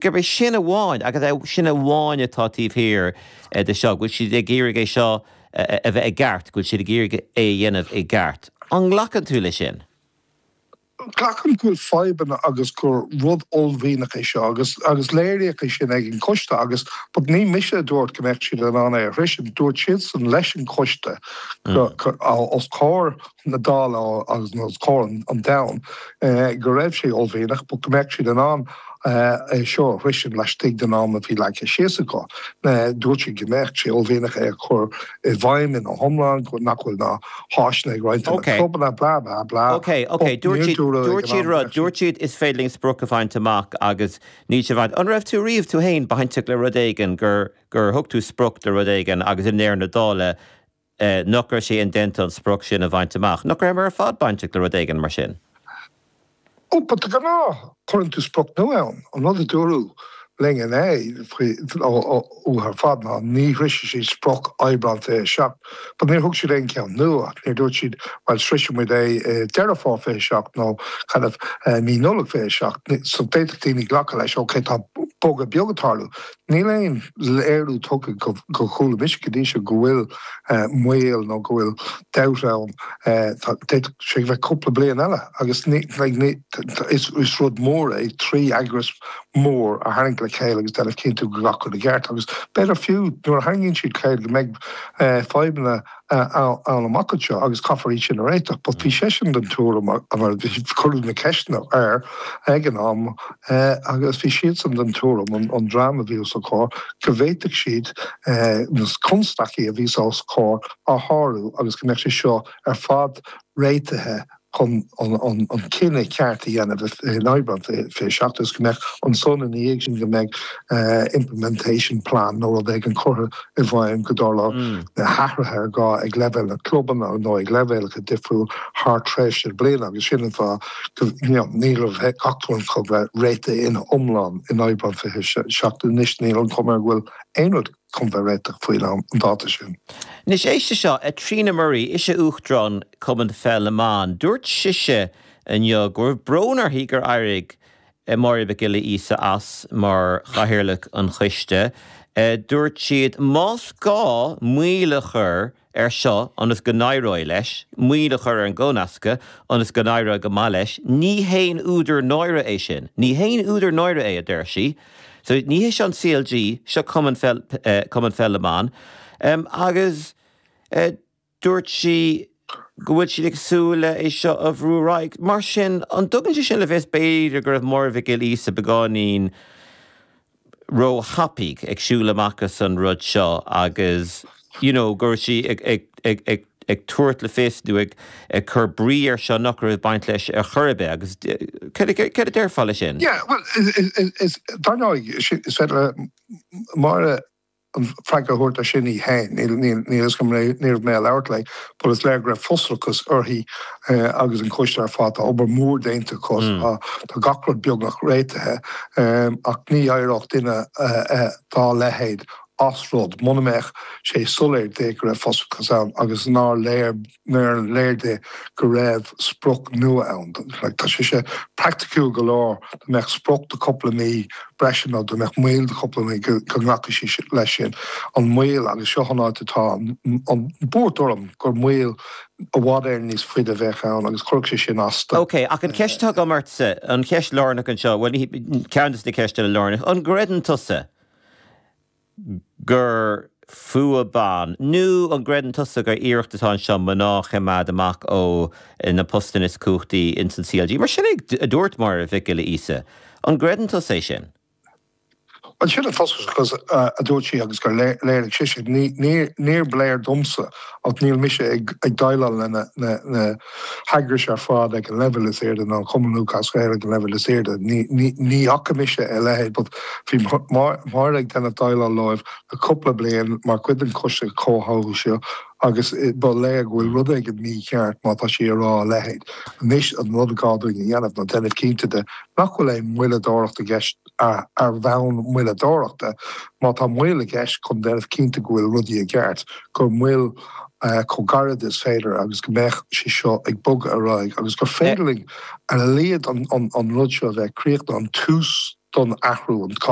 gurb é sin amháin, agus é sin amháin, atá taobh thiar de seo, go bhfuil siad ag iarraidh é seo a bheith i gceart, go bhfuil siad ag iarraidh é a dhéanamh i gceart. An nglacann tú leis sin? Glacaim go bhfuil fadhbanna agus gur rud uaillmhianach é seo, agus léiríodh é sin ag an gcoiste agus, but ní mise a dúirt go mbeadh siad in ann é a shroichint, dúirt siadsan leis an gcoiste os comhair na Dála agus os comhair an domhain go raibh sé uaillmhianach but go mbeadh siad in ann. é seo a shroichint laistigh den am a bhí leagtha síos acu. Dúirt siad go mbeadh sé uaillmhianach é a chur i bhfeidhm ina iomlán, nach bhfuil ná háiseanna ag roinnt de na clubanna, blah, blah, blah. OK, OK. Dúirt siad rud, dúirt siad is féidir linn sprioc a bhaint amach agus níl sé bainte. An raibh tú riamh tú féin bainteach le rud éigin gur thug tú sprioc le rud éigin agus i ndeireadh na dála, Nach raibh sé indéanta an sprioc sin a bhaint amach? Nach rabhamar ar fad bainteach le rud éigin mar sin? Ó, but de ghnáth, cuireann tú sprioc nua ann. An rud a dúradh linn inné, faoi, ó, ó, uathu ar fad, ná, ní shroichfidh siad sprioc Aibreán 27. But níor thug siad aon cheann nua. Níor dúirt siad, bhuel, sroichfidh muid é i Deireadh Fómhair 27, nó, kind of, i mí Nollag 27. So, d'fhéadfadh daoine glacadh leis, okay, tá bogadh beag ag tarlú. Níl aon léiriú tugtha go gcuala mise go dtí seo go bhfuil moill nó go bhfuil dabht ann. D'fhéadfadh sé a bheith cúpla bliain eile agus is rud mór é trí eagras mór a tharraingt le chéile agus déanamh cinnte go nglacfar i gceart agus b'fhéidir fiú nuair a tharraingíonn siad le chéile go mbeidh fadhbanna ann amach anseo agus caithfear iad sin a réiteach. But bhí seisean den tuairim, mar cuireadh na ceisteanna air ag an am agus bhí siadsan den tuairim, an dream a bhí os a gcomhair, go bhféadfadh siad na constaicí a bhí os a gcomhair a shárú agus go mbeadh sé seo ar fad réitithe chun an cinneadh ceart a dhéanamh in Aibreán fiche seacht, agus go mbeadh ansan ina dhiaidh sin, go mbeidh implementation plan nó rud éigin curtha i bhfeidhm go dtarlóidh na hathruithe is gá ag leibhéal na clubanna nó, ag leibhéalacha difriúil thar tréimhse bliana agus sin an fáth go, you know, ní raibh ach tú an cogadh réitithe ina iomlán in Aibreán fiche seacht anois níl an chuma air go bhfuil aon rud. chun a bheith réitithe faoin am, an dáta sin. Anois éist leis seo, Trina Murray, ise Uachtarán Chumann Pheil na mBan, dúirt sise inniu go raibh brón uirthi gur éirigh Máire Mhic Giolla Íosa as mar chathaoirleach an choiste. Dúirt siad, más gá moill a chur air seo ionas go n-éireoidh leis moill a chur ar an gcomhnascadh ionas go n-éireoidh go maith leis, ní haon údar náire é sin. Ní haon údar náire é, a deir sí. So ní hé seo an CLG, seo Cumann Pheil na mBan. Agus dúirt sí go bhfuil siad ag súil é seo a bhrú ar aghaidh. Mar sin, an dtugann sé sin le fios b'fhéidir go raibh Máire Mhic Giolla Íosa beagáinín róthapaidh ag siúl amach as an rud seo agus you know go raibh sí ag tabhairt le fios nó ag cur brí air seo nach raibh ag baint leis ar chor ar bith agus céard a déarfá leis sin? Yeah, well, is, is, is, dar ndóigh, is féidir le Máire freagra a thabhairt air sin í féin. Níl a fhios agam, ní raibh mé ag labhairt léi, but is léir go raibh frustrachas uirthi agus an coiste ar fad. Tá obair mhór déanta acu, tá gach rud beagnach réitithe, ach ní éireodh duine dá leithéid as rud muna mbeadh sé soiléir di go raibh frustrachas ann agus nár léir nár léir di go raibh sprioc nua ann. Tá sé seo praiticiúil go leor, dá mbeadh sprioc de chúpla mí breise nó dá mbeadh moill de chúpla mí go nglacfadh sí leis sin. An mhoill, agus seo an áit atá an bhuairt orm, gur moill i bhfad Éireann níos faide a bheadh ann agus chuirfeadh sé sin as di. OK, ach an cheist atá agam ort, an cheist lárnach anseo, bhuel, ceann de na ceisteanna lárnacha, an gcreideann tusa, gur fuath ban. Nó an gcreideann tusa gur iarracht atá anseo mná a choimeád amach ó na postanna is cumhachtaí ins an CLG? Mar sin é a dúirt Máire Mhic Giolla Íosa. An gcreideann tusa é sin? Bhuel, sin na focail a dúirt sí agus gur léir di é, níor léir domsa ach níl mise ag déileáil le na. heagrais ar fad ag an leibhéal is airde, ná an Cumann Lúthchleas Gael ag an leibhéal is airde, ní fhaca mise a leithéid, but bhí Máire ag déanamh déileáil leo le cúpla bliain mar chuid den choiste comhtháthú seo agus ba léir go bhfuil rud éigin mícheart má tá sí ag rá a leithéid. Anois, an rud is gá dúinn a dhéanamh ná déanamh cinnte de nach bhfuil aon mhoilleadóireacht i gceist. ar bhonn moilleadóireachta, má tá moill i gceist, chun déanamh cinnte go bhfuil rudaí i gceart, gur moill chomh gairid is féidir agus go mbeidh sé seo ag bogadh ar aghaidh agus gur féidir linn, ar a laghad, an rud seo a bheith críochnaithe, an tús don athrú.